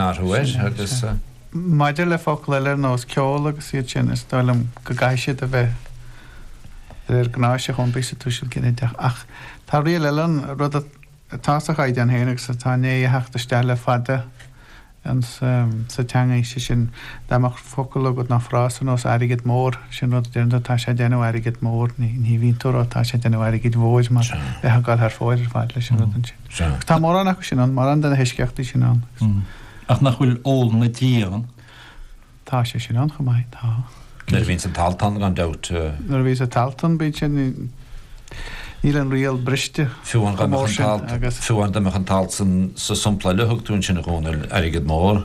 orthu air agus. Maidir le focail eile ar nós ceol agus iad sin, is dóigh liom go gcaithfidh siad a bheith de réir gnáis chun bheith sa tuiseal ginideach. Ach tá riail eile ann, rud atá sa Chaighdeán féin agus atá i ndiaidh a theacht isteach le fada insa teanga, sé sin, dá mbeadh focal agat nó frása ar nós airgead mór, sin rud a deireann tú, tá sé ag déanamh airgead mór, ní bhíonn tú a rá tá sé ag déanamh airgid mhóir mar bheifeá ag dul thar fóir ar fad leis an rud ansin. Sea. Tá mórán acu sin ann, mórán de na heisceachtaí sin ann. Ach nach bhfuil ól na dí ann? Tá sé sin ann chomh maith, tá. Nuair a bhíonns an t-alt ann, gan dabht. Nuair a bhíonns an t-alt ann, bíonn sé, níl an riail briste chomh mór sin agus. Fiú amháin dá mbeadh an t-alt sa sampla a thug tú ansin, a Dhónaill, airgead mór.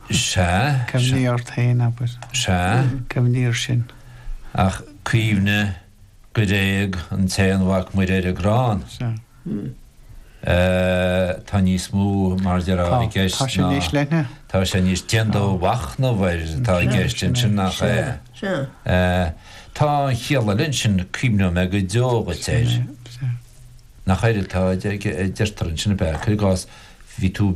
Sea, sea. Cuimhnigh ort féin, abair. Sea. Cuimhnigh air sin. Ach cuimhnigh gur éag an tAonmhac Muire ar an gcrann. Sea. Eh, tá níos mó, mar a déarfá, Tá. i gceist Tá sé ná, níos leithne. tá sé níos déan do mhachnamh air atá i Sea, gceist sin é. ansin, nach ea? Sea. Sea. Eh, tá an chiall eile ansin, cuimhneoidh mé go deo dhuit Sin air. é. Sea. Nach éard atá, de- de- deirtear ansin, ab ea? Cuir i gcás, bhí tú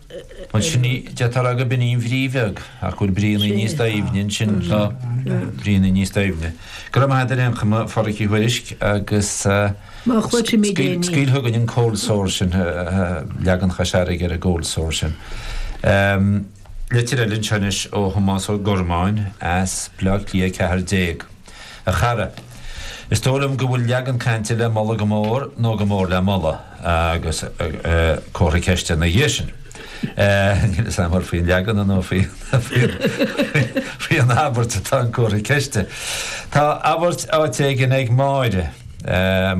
Ansin ní deirtear gurb in í an bhrí bheag, ach go bhfuil bríonna níos doimhne ansin leo, bríonna níos doimhne. Go raibh maith agat ar aon chuma, a Phádraic Uí Thuairisg, agus scaoil chugainn an cold sore sin, leagan Chois Fharraige ar an gcold sore sin. Litir eile anseo anois ó Thomás Ó Gormáin as Bleá Cliath 14. A chara. Is dóigh liom go bhfuil leagan cainte le moladh go mór, nó go mór le moladh, agus comhartha ceiste ina dhiaidh sin. Níl 'fhios a'm ar faoin leagan nó faoin abairt atá an comhartha ceiste. Tá abairt áit éigin ag Máire,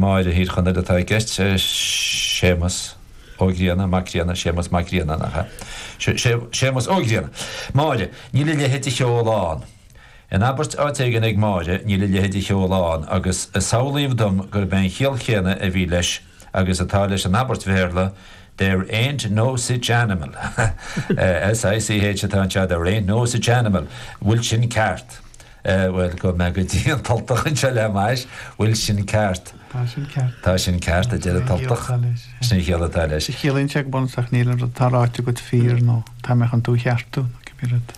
Máire Thír Chonaill atá i gceist, Séamas Ó Grianna, Mac Grianna, Séamas Mac Grianna, nach ea? Séamas Ó Grianna. Máire, níl a leithéid de cheol ann. In abairt áit éigin ag Máire níl a leithéid de cheol ann agus samhlaíodh dom gurb é an chiall chéanna a bhí leis agus atá leis an abairt Bhéarla There ain't no sich animal. SICH atá anseo, there ain't no sich animal. Bhfuil sin ceart? Bhuel, gabhfaidh mé go dtí an tUltach anseo le m'ais. Bhfuil sin ceart? Tá sin ceart. Tá sin ceart, a deir an tUltach. Sin é an chiall atá leis. Ciallaíonn sé go bunúsach níl an rud atá ráite agat fíor nó tá mé chun tú a cheartú, cibé rud.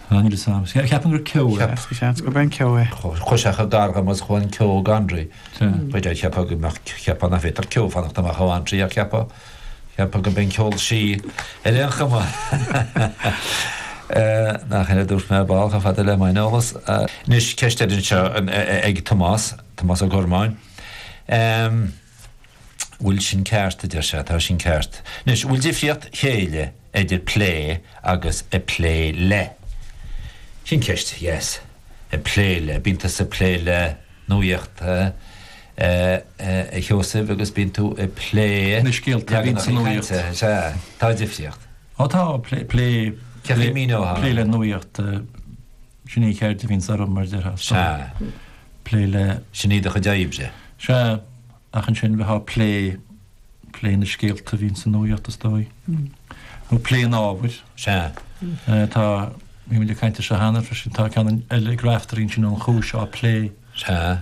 An iris am. Ceapaim gur ceo é. Is seans gurb é an ceo é. Chuir sé chomh gar dhom agus chomh an ceo go André. Chuir sé cheapadh go mbeadh ceapadh nach bhféadtar ceo fanacht amach ó André ach ceapadh, ceapadh go mbeidh an ceol sí ar aon chuma. Nach ea, dúirt mé, a bádh chomh fada le maith an eolas. Anois, ceist eile anseo ag Tomás, Tomás Ó Gormáin. bhfuil sin ceart, a deir sé, tá sin ceart. Anois, an bhfuil difríocht chéille idir plé agus ag plé le? Sin ceist, yes. Ag plé le, bíonn tusa ag plé le nuaíocht, a Sheosaimh, agus bíonn tú ag plé le scéalta a bhíonn sa nuaíocht. Is ea, tá difríocht. Ó tá, plé, plé le nuaíocht. Sin é an cheird a bhíonns orm, mar a déarfá. Sea. Plé le. Sin í do chuid oibre. Sea. Ach ansin bheitheá plé, plé na scéalta a bhíonns sa nuaíocht, is dóigh. Nó plé an ábhair. Sea. Eh, tá, bhí muid ag caint air seo cheana freisin, tá ceann eile ag Raiftearaí ansin An Chúis á plé. Sea.